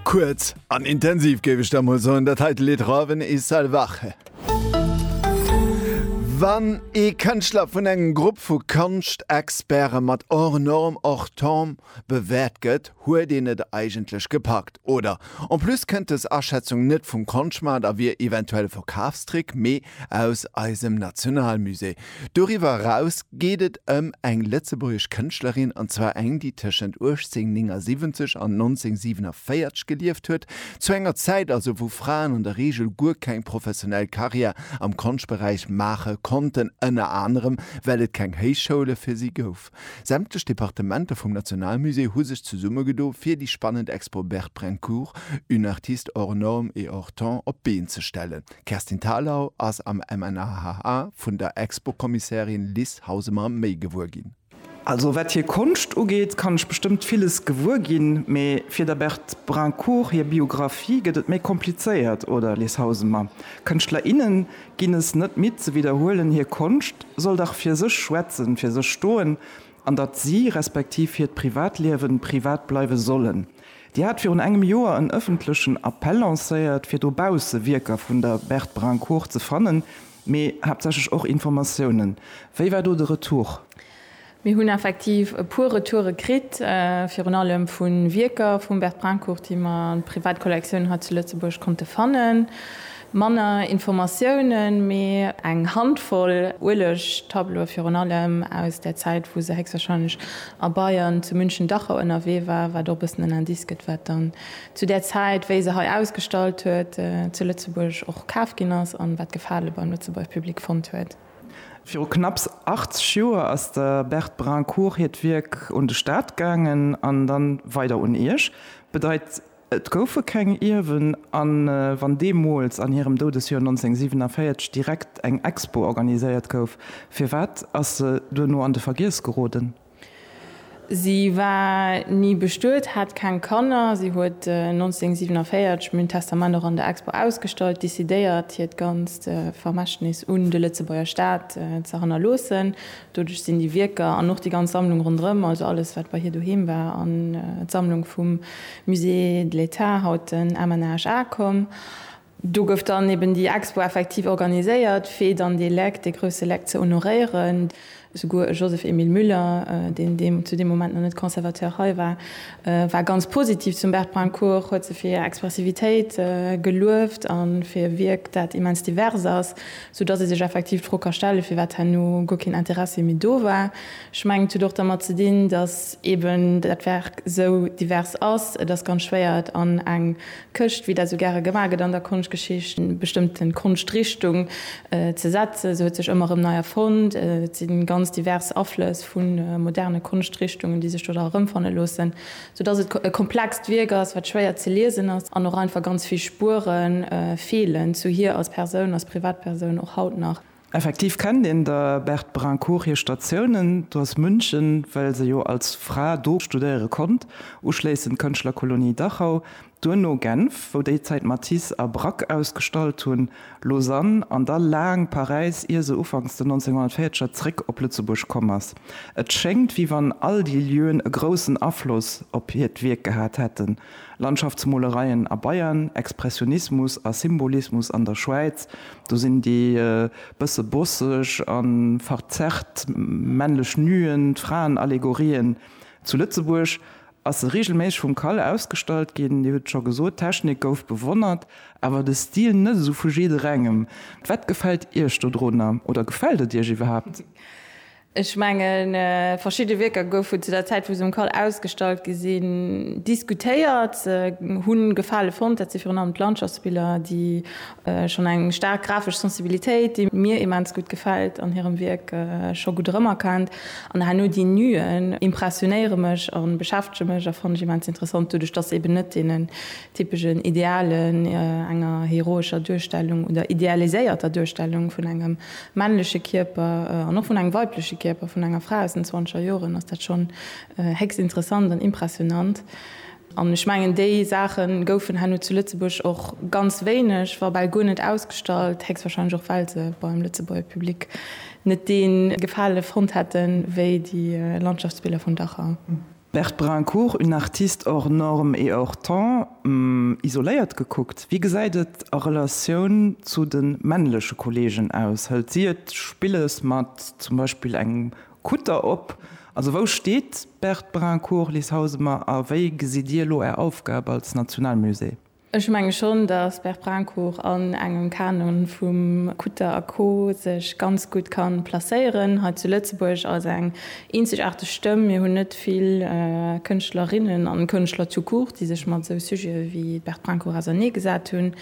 Kuerz an intensiv géif ech da mol soen, dat heite Lidd Raven e salvaje. Wann ee Kënschtler vun engem Grupp vu Konschtexperte mat hors norme, hors temps bewäert gëtt, huet een et eigentlech gepackt, oder? En plus kënnt dës Aschätzung net vum Konschtmaart a wier eventuell e Verkafstrick, mee Aus eisem Nationalmusée. Doriwwer eraus geet et ëm eng lëtzebuergesch Kënschtlerin, an zwar eng, déi tëschent 1879 an 1947 gelieft huet, zu enger Zäit also, wou Fraen an der Reegel guer keng professionell Karriär am Konschtberäich maache konnten, ënner anerem well et keng Héichschoule fir si gouf. Sämtlech Departementer vum Nationalmusée hu sech zesummegedo fir déi spannend Expo Berprencourt, une artiste hors norme et hors temps op d'Been ze stellen. D'Kerstin Thalau ass am MNHHA vun der Expo-Kommissärin Lis Hausemer méi gewuer ginn. Also wat hir Konscht ugeet, kann ech bestëmmt villes gewuer ginn, mee fir der Berprencourt hir Biographie gëtt et méi komplizéiert, oder Lis Hausemer? Kënschtler, innen ginn es net midd ze widderhuelen, hir Konscht soll dach fir sech schwätzen, fir sech stoen, an datt si, respektiv hiert Privatliewen, privat bleiwe sollen. Dir hat virun engem Joer en ëffentlechen Appell lancéiert, fir dobausse Wierker vun der Berthe Brincourt ze fannen, mee haaptsächlech och Informatiounen. Wéi war do de Retour? Mir hunn effektiv e puer Retoure kritt, virun allem vu Wierker vum Bert Brincourt, déi mer an d'Privatkollektioun hei zu Lëtzebuerg konnte fannen. Manner Informatiounen, mee eng Handvoll Ueleg-Tableaue, virun allem aus där Zäit, wou se héchstwarscheinlech a Bayern zu München-Dachau ënnerwee war, wat och e bëssen en Indice gëtt, wat dann zu där Zäit, wéi se hei ausgestallt huet, zu Lëtzebuerg och kaf ginn ass an wat Gefale beim Lëtzebuerger Public fonnt huet. Viru knapps 80 Joer ass der Berthe Brincourt hiert Wierk un de Staat gaangen an dann weider un Iech. Bedeit et goufe keng Ierwen an wann deemools an hirem Doudesjoer 1947 direkt eng Expo organiséiert gouf, firwat ass se duerno an de Vergiess geroden? Si war ni bestuet, hat keng Kanner. Si huet 1947 mün Testament och an der Expo ausgestallt, decidéiert hiert ganzt Vermächtnis un de Lëtzebuerger Staat ze hannerloossen. Doduerch sinn déi Wierker an och déi ganz Sammlung ronderëm, also alles wat bei hir doheem war, an d'Sammlung vum Musée de l'État, haut den MNHA, komm. Do gouf dann eben déi Expo effektiv organiséiert, fir dann dee Leck, dee grousse Leck ze honoréieren. Souguer e Joseph-Emile Müller, deen deem zu deem Moment nach net Conservateur hei war, war ganz positiv zum Bert Pancourt, huet se fir hir Expressivitéit gelueft a fir e Wierk, dat immens divers ass, soudatt ee sech effektiv d'Fro ka stellen, firwat herno guer keen Interessi méi do war. Ech mengen, et huet och dermat ze dinn, datt eben dat Werk esou divers ass. Et ass ganz schwéier, et an eng Këscht, wéi dat esou gäre gemaach gëtt an der Konschtgeschicht, eng bestëmmte Konschtrichtung ze setzen. Se huet sech ëmmer erëm nei erfonnt. Et si ganz divers Aflëss vu moderne Konschtrichtungen, déi sech do da erëmfanne loossen, soudatt et e komplext Wierk ass, wat schwéier ze liesen ass an och einfach ganz vill Spuere feelen zu hir als Persoun, als Privatpersoun och haut nach. Effektiv kennt een der Berthe Brincourt hir Statiounen, do ass München, well se jo als Fra do studéiere konnt, uschléissend d'Kënschtlerkolonie Dachau, duerno Genf, wou déi Zäit Matisse a Braque ausgestallt hunn, Lausanne an da laang Paräis, ier se ufanks den 1940er zréck op Lëtzebuerg komm ass. Et schéngt, wéi wann all déi Lieuen e groussen Afloss op hiert Wierk gehat hätten. Landschaftsmolereien a Bayern, Expressionismus a Symbolismus an der Schwäiz, do sinn déi bësse bosseg a verzerrt männlech Nuen d'Fraenallegorien. Zu Lëtzebuerg ass se reegelméisseg vum Kal ausgestallt ginn. Dir hutt et scho gesot, d'Technik gouf bewonnert, awer de Stil net esou vu jidderengem. Wat gefält Iech dodrunner oder gefält et Iech iwwerhaapt? Ech mengen, verschidde Wierker goufen zu der Zäit, wou se um cal ausgestallt gi sinn, diskutéiert, hu Gefale fonnt. Dat si virun allem d'Landschaftsbiller, déi schonn eng staark grafesch Sensibilitéit, déi mir immens gutt gefält an hirem Wierk, scho gutt erëmerkennt. An herno déi Nuen impressionéiere mech a beschäftege mech a fannen ech immens interessant, doduerch dass se eben net deenen typeschen Idealen, enger heroescher Duerstellung oder idealiséierter Duerstellung vun engem männleche Kierper an och vun engem weibleche Kierper vun enger Fra aus den zwanzeger Joren, ass dat schonn héchst interessant an impressionant. An ech mengen, déi Saache goufen herno zu Lëtzebuerg och ganz wéineg, wa bal guer net ausgestallt, héchstwahrscheinlech och well se beim Lëtzebuerger Public net dee Gefale fonnt hätten, wéi déi Landschaftsbiller vun Dachau. Berthe Brincourt, Une artiste hors norme et hors temps, isoléiert gekuckt, wéi gesäit et a Relatioun zu de männleche Kolleegen aus? Hëlt si et spillesch mat zum Beispill engem Kutter op? Also wou steet d'Berthe Brincourt, Liz Hausemer, a wéi gesitt Dir elo Är Aufgab als Nationalmusée? Ech menge schonn, datt Berprincourt an engem Kanon vum Kutter a Co sech ganz gutt ka placéieren hei zu Lëtzebuerg als eng eenzegaarteg Stëmm. Mir hunn net vill Kënschtlerinnen an Kënschtler tout court, déi sech mat esou Sujete wéi d'Berprincourt ausernee gesat hunn,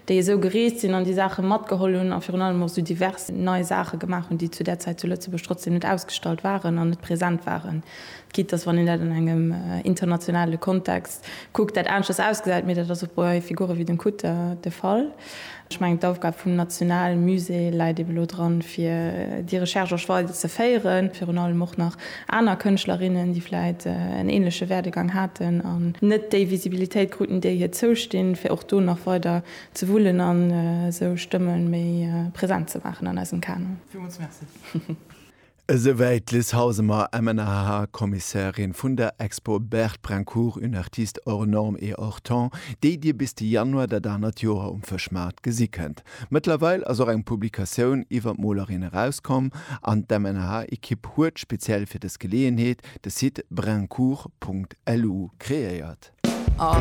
déi esou gereest sinn an déi Saache matgeholl hunn a virun allem och esou divers nei Saache gemaach hunn, déi zu där Zäit zu Lëtzebuerg trotzdeem net ausgestallt waren an net present waren. Quitte dass, wann een dat an engem internationale Kontext kuckt, dat aneschters ausgesäit, mee dat ass och bei Figure wéi dem Kutter de Fall. Ech mengen, d'Aufgab vum nationale Musée läit ebe lo dran, fir déi Recherche och weider ze féieren, virun allem och nach aner Kënschtlerinnen, déi vläicht en änleche Werdegang haten an net déi Visibilitéit kruten, déi hir zoustinn, fir och do nach weider ze wullen a sou Stëmme méi present ze maachen an eisem Kanon. Villmools Merci. Esouwäit d'Liz Hausemer, MNHH-Kommissärin vun der Expo Berthe Brincourt, une artiste hors norme et hors temps, déi Dir bis de Januar dat anert Joer um Fëschmaart gesi kënnt. Mëttlerweil ass och eng Publikatioun iwwer d'Molerin erauskomm an d'MNHH-Ekipp huet speziell fir dës Geleeënheet de Site brincourt.lu kreéiert.